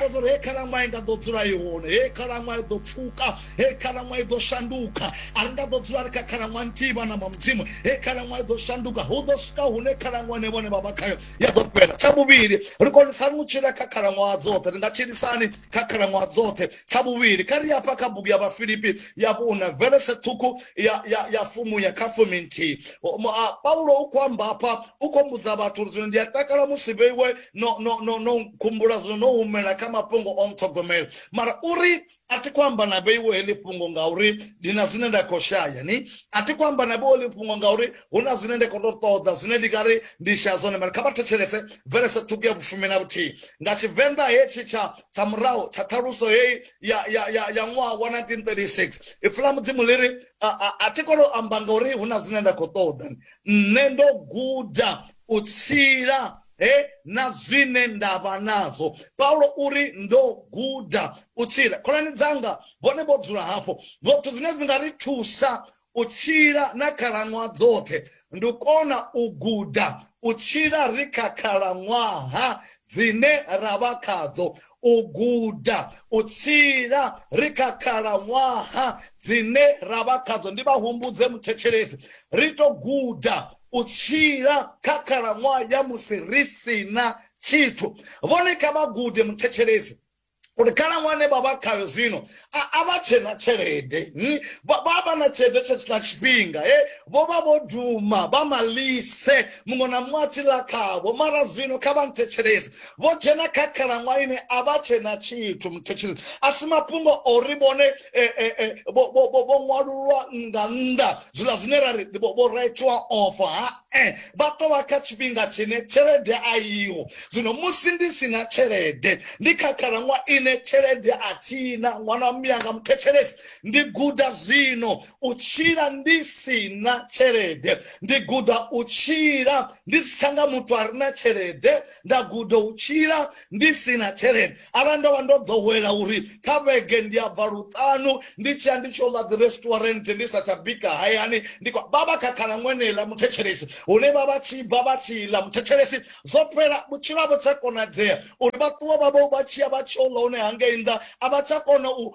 amba uri hei khalaṅwaha i nga ḓo dzula i hone hei khalaṅwaha i ḓo pfuka hei khalaṅwaha i ḓo shanduka a ri nga ḓo dzula ri kha khalaṅwaha nthihi vhana ma mudzimu hei khalaṅwaha i ḓo shanduka hu ḓo swika hune khalaṅwaha ne vhone vha vha khayo ya ḓo fhela tsha vhuvhili ri konisani u tshila kha khalaṅwaha dzoṱhe ri nga tshilisani kha khalaṅwaha dzoṱhe tsha vhuvhili kha ri afha kha bugu ya vhafilipi ya vhuna velese ṱhukhu ya, ya, ya fumuya kha fumi nthihi paulo u khou amba afha u khou mbudza vhathu uri zwino ndi a takala musi vheiwe no no no no khumbula zwo no humela kha mafhungo o nṱhogomela mara uri a thi khou amba na vheiwo heḽi fhungo ngauri ndi na zwine nda khou shaya ni a thi khou amba na vheiwo heḽi fhungo ngauri hu na zwine nda khou to ṱoḓa zwine ndi nga ri ndi shaya zwone mara kha vha thetshelese verese ṱhukhu ya vhufumi na vhuthihi nga tshivenḓa hetshi tsha tsha murahu tsha ṱhaluso heyi ya ya ya ya ṅwaha wa 1936 ipfi ḽa mudzimu ḽi ri a thi khou to amba ngauri hu na zwine nda khou ṱoḓa nṋe ndo guda u tshila he na zwine nda vha nazwo paulo uri ndo guda u tshila khonani dzanga vhone vho dzula hafho vhothu zwine zwi nga ri thusa u tshila na khalaṅwaha dzoṱhe ndi u kona u guda u tshila ri kha khalaṅwaha dzine ra vha khadzo u guda u tshila ri kha khalaṅwaha dzine ra vha khadzo ndi vha humbudze muthetshelesi ri to guda u tshila kha khalaṅwaha ya musi ri si na tshithu vhone kha vha gude muthetshelesi uri khalaṅwaha ne vha vha khayo zwino a vha tshe na tshelede hmm? vha vha na tshelede tsha tshifhinga e vho vha vho duma vha malise muṅwe na muṅwe a tshi ḽa khavho mara zwino kha vha nthetshelesi vho dzhena kha khalaṅwaha ine a vha tshe na tshithu muthetshelesi a si mafhungo ori vhone eh, eh, eh, vho vho vho vho ṅwalulwa nga nnḓa zwiḽa zwine ra ri vho vho retwa ofa ha eh vha to vha kha tshifhinga tshine tshelede a iho zwino musi ndi si na tshelede ndi kha khalaṅwa ine tshelede a thina ṅwana wa muyanga muthetshelesi ndi guda zwino u tshila ndi si na tshelede ndi guda u tshila ndi si tsha nga muthu a re na tshelede nda guda u tshila ndi si na tshelede arali ndo vha ndo ḓowela uri kha vhege ndi a bva luṱanu ndi tshi ya ndi tshi ola dzi restaurant ndi sa tsha bika hayani ndi vha vha kha khalan'wenela muthetshelesi hune vha vha tshi bva vha tshi ḽa muthetshelesi zwo fhela vhutshilo vho tsha konadzea uri vha ṱuwa vha vho vha tshiya vha tshi ola hone hangei nnḓa a vha tsha kona u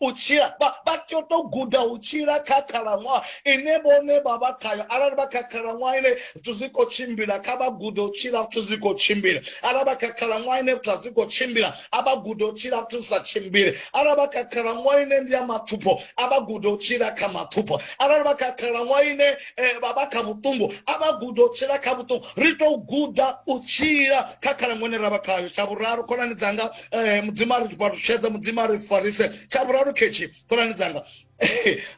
u tshila vha tea u tou guda u tshila kha khalaṅwaha ine vhone vha vha khayo arali vha kha khalaṅwaha ine zwithu zwi khou tshimbila kha vha gude u tshila zwithu zwi khou tshimbila arali vha kha khalaṅwaha ine zwithu a zwi khou tshimbila a vha gude u tshila zwithu zwi sa tshimbile arali vha kha khalaṅwaha ine ndi ya mathupho a vha gude u tshila kha mathupho arali vha kha khalaṅwaha ine eh, vha vha kha vhuṱungu a vha gude u tshila kha vhuṱungu ri tou guda u tshila kha khalaṅwaha ine ra vha khayo tsha vhuraru khonani dzanga eh, mudzimu a ri fhalushedze mudzimu a ri farise tsha vhuraru khetshi khonani dzanga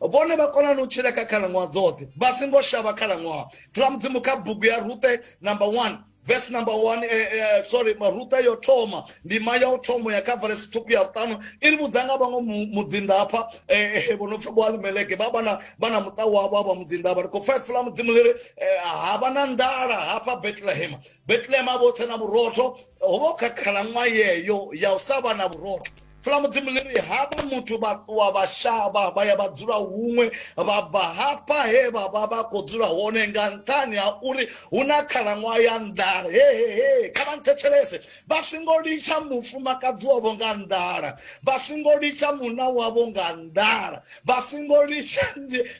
vhone vha konani u tshila kha khalaṅwaha dzoṱhe vha singo shavha khalaṅwaha dzula mudzimu kha bugu ya rute number one verse number one eh, eh, sorry maruta yo thoma ndima ya u thoma ya kha verse ṱhukhu ya vhuṱanu i ri vhudza nga vhaṅwe muḓinḓa hafha eh, eh, vho no pfi boalimeleke vha vhana vhana muṱa wavho avha muḓinḓa vha ri khou pfa ifu ḽa mudzimu ḽi ri eh, ha vha na nḓala hafha betlehema betlehema vho tse na vhurotho ho vha kha khalaṅwaha yeyo ya u sa vha na vhurotho fula mudzimu ḽi ri havha muthu vha ṱuwa vha shavha vha ya vha dzula huṅwe vha bva hafha he vha vha vha khou dzula hone nga nṱhani ha uri hu na khalaṅwaha ya nḓala hehehe kha vha nthetshelese vha singo litsha mufumakadzi wavho nga nḓala vha singo litsha munna wavho nga nḓala vha singo litsha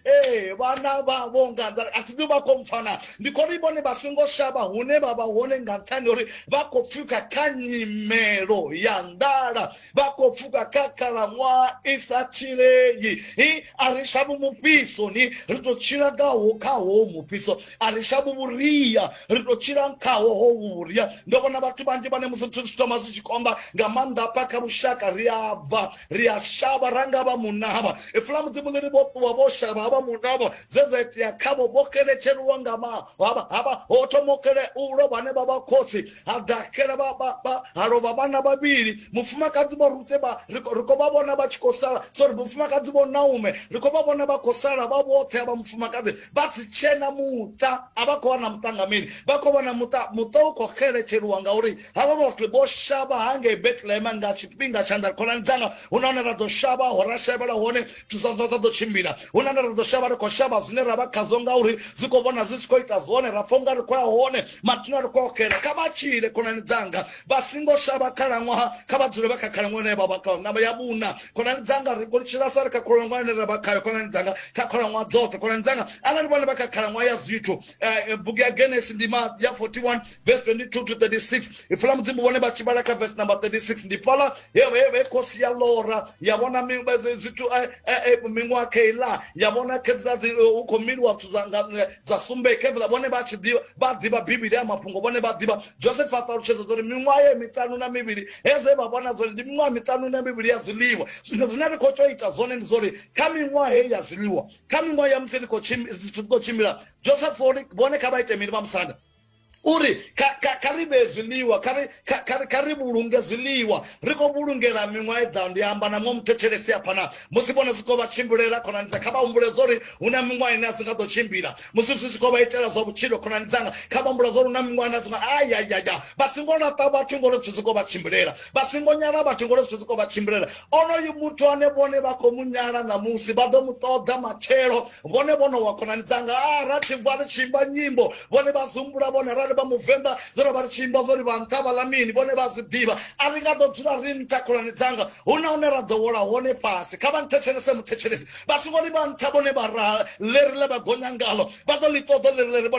ee vhana vhavho nga nḓa a thi ḓi vha khou mpfana ndi khou ri vhone vha songo shavha hune vha vha hone nga nṱhani uri vha khou pfuka kha nyimelo ya nḓala vha khou pfuka kha khalaṅwaha i sa tshilei i a ri shavho mufhisoni ri tou tshila ngaho khaho mufhiso a ri shavho vhuria ri tou tshila khaho ho vhuria ndo vhona vhathu vhanzhi vhane musi zwithu zwi thoma zwi tshi konḓa nga maanḓa pfa kha lushaka ri a bva ri a shavha ra nga vha munavha ifula mudzimu ḽi ri vho ṱuwa vho shavha havha munavha zwe dza itea khavho vho keletsheliwa nga mahavha ho thoma kele u lovha ane vha vha khotsi ha ḓaxela ha lovha vhana vhavhili mufumakadzi vho rutse ri khou vha vhona vha tshi khou sala sorry mufumakadzi vho naume ri khou vha vhona vha khou sala vha vhoṱhe havha mufumakadzi vha si tshena muṱa a vha khou wana muṱa nga mini vha khou wana muṱa muṱa u khou xeletsheliwa ngauri havha vha ri vho shavha ha ngei betlehema nga tshifhinga tsha nda khonani dzanga hu na hone ra ḓo shavha ho ra shavhela hone zwithu zwa zwa ḓo tshimbila hu na hone ra ḓo shavha ri khou shavha zwine ra vha khazwo ngauri zwi khou vhona zwi si khou ita zwone ra pfha unga ri khou ya hone mathina ri khou ya xela kha vha tshile khonani dzanga vha singo shavha khalaṅwaha kha vha dzule vha kha khalaṅwaha ine vha vha khayo namba ya vhuna khonani dzanga ri khou tshila sa ri kha khalaṅwaha ine ra vha khayo khonani dzanga kha khalaṅwaha dzoṱhe khonani dzanga arali vhone vha kha khalaṅwaha ya zwithu eh, eh, bugu ya genesi ndima ya 41 verse 22 to 36 ifula mudzimu vhone vha tshi vhala kha verse number 36 ndi fhala he khosi ya lora ya vhona zwithu eh, eh, eh, miṅwaha kheila ya vhona khedzila hu khou miliwa zwithu dza sumbe khevela vhone vha tshi ḓivha vha ḓivha bivhili ya mafhungo vhone vha ḓivha joseph a ṱalutshedza zwori miṅwaha ye miṱanu na mivhili hezwo vha vhona zwori ndi miṅwaha miṱanu na mivhili ya zwiḽiwa zwino zwine ri khou tea u ita zwone ndi zwori kha miṅwaha heyi ya zwiḽiwa kha miṅwaha ya musi ri khou tshimbila joseph vhone kha vha ite mini vha musanda uri kha ri vhee zwiḽiwa kha ri vhulunge zwiḽiwa ri khou vhulungela miṅwaha i ḓaho ndi amba na muṅwe muthetshelesi a phana musi vhone zwi khou vha tshimbilela khonani dza kha vha humbule zwa uri hu na miṅwaha ine a si nga ḓo tshimbila musi zwi tshi khou vha itela zwa vhutshilo khonani dzanga kha vha humbula zwa uri hu na miṅwaha ine a si nga ayayaya vha singo laṱa vhathu ngori zwithu zwi khou vha tshimbilela vha singo nyala vhathu ngori zwithu zwi khou vha tshimbilela onoyu muthu ane vhone vha khou mu nyala ṋamusi vha ḓo mu ṱoḓa matshelo vhone vhono wa khonani dzanga a ah, ra tshi bva ri tshi imba nyimbo vhone vha zumbula vhone arali vha muvenḓa zwo ro vha ri tshi imba zwo ri vha nṱha vha ḽa mini vhone vha zwi ḓivha a ri nga ḓo dzula ri nṱha khonani dzanga hu na hune ra ḓo wola hone fhasi kha vha nthetshelese muthetshelesi vha songo ḽi vha nṱha vhone vha ra ḽeri ḽe vha gonya ngalo vha ḓo ḽi ṱoḓo ḽeri ḽeri